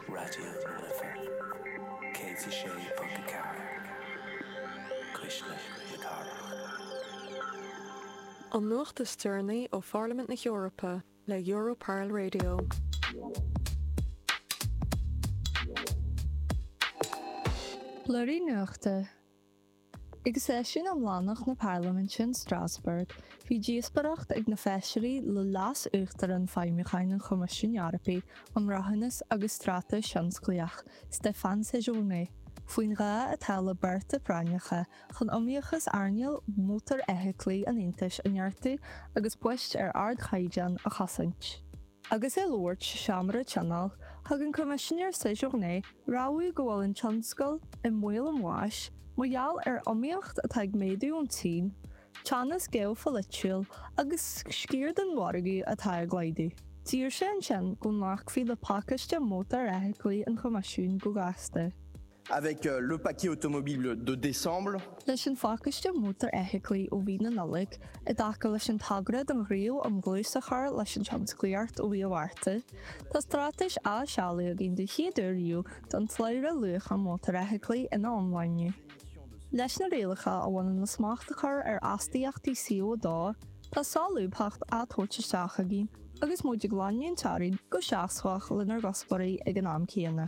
Raidió na Life, 106.4, Cuisle na Cathrach. An nuacht is deireanaí ó Pharlaimint na hEorpa le Europarl Radio. Lár na nuachta Ag seisiún iomlánach na Parlaiminte in Strasbourg, bhí díospóireacht ag na Feisirí le Leas-Uachtarán Feidhmiúcháin an Choimisiúin Eorpaigh um Rathúnas agus Straitéis Thionsclaíoch, Stéphane Séjourné, faoin ghá atá le bearta práinneacha chun iomaíochas earnáil mhótarfheithiclí an Aontais a neartú agus poist ar ardchaighdeán a chosaint. Agus é ag labhairt sa Seomra Tionóil, thug an Coimisinéir Séjourné rabhadh go bhfuil an tionscal i mbaol an bháis mar gheall ar iomaíocht atá ag méadú ón tSín, teannas geopholaitiúil agus sciar den mhargadh atá ag laghdú. D'iarr sé ansin go nglacfaí le pacáiste mótarfheithiclí an Choimisiúin go gasta. Avec le paquet automobile de décembre. Leis an phacáiste mótarfheithiclí ó mhí na Nollag, i dtaca leis an togra don Ghníomh um Dhlús a chur leis an Tionsclaíocht ó mhí an Mhárta, tá straitéis á seoladh againn den chéad uair riamh don tslabhra luacha mótarfheithiclí ina iomláine. Leis na rialacha a bhaineann le smacht a chur ar astaíochtaí CO2, tá solúbthacht á tabhairt isteach againn agus muid ag leanúint ar aghaidh go seasmhach lenár gcuspóirí ag an am céanna.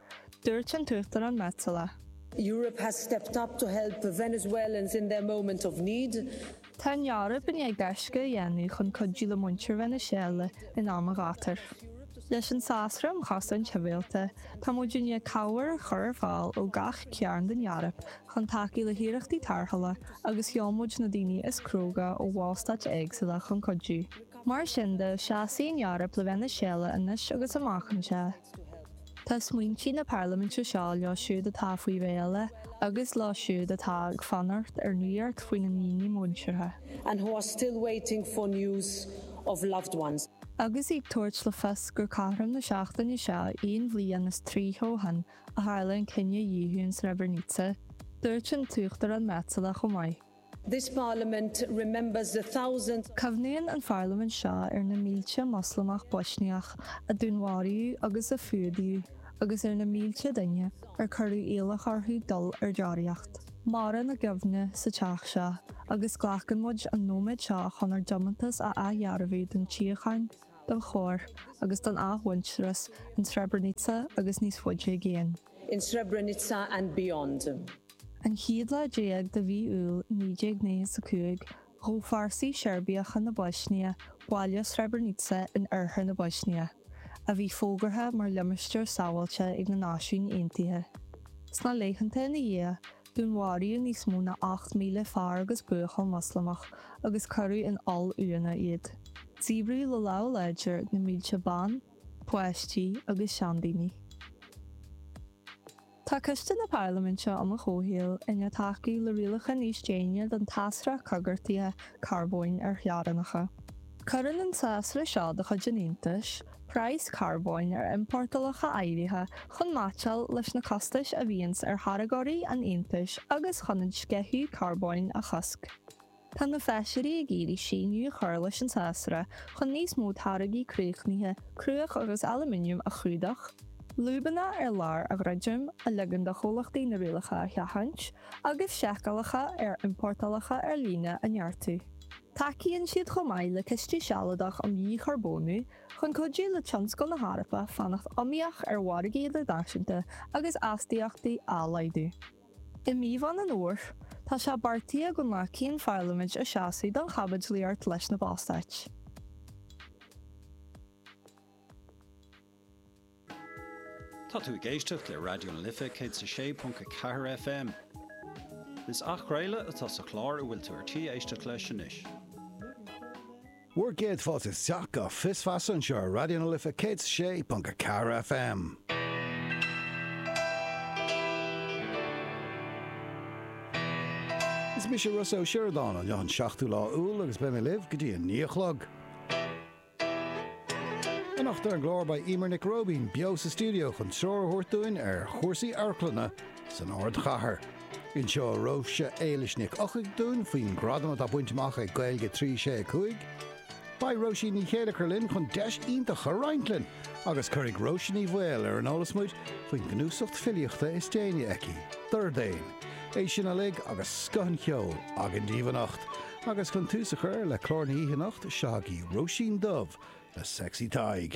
Dúirt an tUachtarán Metsola. Europe has stepped up to help Venezuelans in their moment of need. Tá an Eoraip i ndiaidh gaisce a dhéanamh chun cuidiú le muintir Veiniséala in am an ghátair. Leis an Sásra um Chosaint Shibhialta, tá muid i ndiaidh cabhair a chur ar fáil ó gach cearn den Eoraip chun tacú le hiarrachtaí tarrthála agus sheol muid na daoine is cróga ó bhallstáit éagsúla chun cuidiú. Mar sin de, seasfaidh an Eoraip le Veiniséala anois agus amach anseo. Tá smaointí na parlaiminte seo leo siúd atá faoi mhéala, agus leo siúd atá ag fanacht ar nuacht faoina ndaoine muinteartha. and who are still waiting for news of loved ones. Agus í ag tabhairt le fios gur cothrom na seachtaine seo aon bhliain is tríocha ó shin a tharla an cinedhíothú in Srebrenica, dúirt an tUachtarán Metsola chomh maith. This Parliament remembers the thousands. Cuimhníonn an Pharlaimint seo ar na mílte Moslamach Boisniach a dúnmharaíodh agus a fuadaíodh agus ar na mílte duine ar cuireadh iallach orthu dul ar deoraíocht. Maireann a gcuimhne sa Teach seo agus glacann muid an nóiméad seo chun ár dtiomantas a athdhearbhú don tsíocháin, don chóir agus don athmhuintearas in Srebrenica agus níos faide i gcéin. in Srebrenica and beyond. An chéad lá déag de mhí Iúil 1995, ghabh fórsaí Seirbiacha na Boisnia baile Srebrenica in oirthear na Boisnia, a bhí fógartha mar limistéar sábháilte ag na Náisiúin Aontaithe. Sna laethanta ina dhiaidh, dúnmharaíodh níos mó ná 8,000 fear agus buachaill Moslamach agus cuireadh in oll-uaigheanna iad. Díbríodh le lámh láidir na mílte ban, páistí agus seandaoine. Tá Coiste na Parlaiminte um an gComhshaol i ndiaidh tacú le rialacha níos déine don tsásra coigeartaithe carbóin ar theorainneacha. Cuireann an sásra seo de chuid an Aontais praghas carbóin ar iompórtálacha áirithe chun meaitseáil leis na costais a bhíonns ar tháirgeoirí an Aontais agus chun an sceitheadh carbóin a chosc. Tá na Feisirí ag iarraidh síneadh a chur leis an sásra chun níos mó táirgí críochnaithe cruach agus aluminium a chlúdach, lúbanna ar lár a dhruidim, a ligeann do chomhlachtaí na rialacha a sheachaint, agus seiceálacha ar iompórtálacha ar líne a neartú. Tacaíonn siad chomh maith le Ciste Sealadach um Dhícharbónú chun cuidiú le tionscal na hEorpa fanacht iomaíoch ar mhargaí idirnáisiúnta agus astaíochtaí á laghdú. I mí Mheán an Fhómhair, tá sé beartaithe go nglacfaidh an Pharlaimint a seasamh don chaibidlíocht leis na Ballstáit. Tá tú ag éisteacht le Raidió na Life 106.4 FM. Is athchraoladh atá sa chlár a bhfuil tú ar tí éisteacht leis anois. Bhur gcéad fáilte isteach go Fios Feasa anseo ar Raidió na Life 106.4 FM. Is mise Rossa Ó Sioradáin inniu an 7ú lá Iúil agus beidh mé libh go dtí a naoi a chlog. Anocht ar an gclár beidh Emer Nic Róibín beo sa stiúideo chun treoir a thabhairt dúinn ar chúrsaí amharclainne san Ardchathair. Inseoidh Róise Éilís Nic Eochaidh dúinn faoin ghradam atá bainte amach ag Gaeilge 3 6 5. Beidh Róisín Ní Chéilleachair linn chun deis iontach a roinnt linn agus cuirfidh Róise Ní Bhaoill ar an eolas muid faoin gcnuasacht filíochta is déanaí aici, Dordéan. É sin uilig agus scoth an cheoil againn daoibh anocht. Agus chun tús a chur le clár na hoíche anocht, seo agaibh Róisín Dubh le Sexy Tadhg.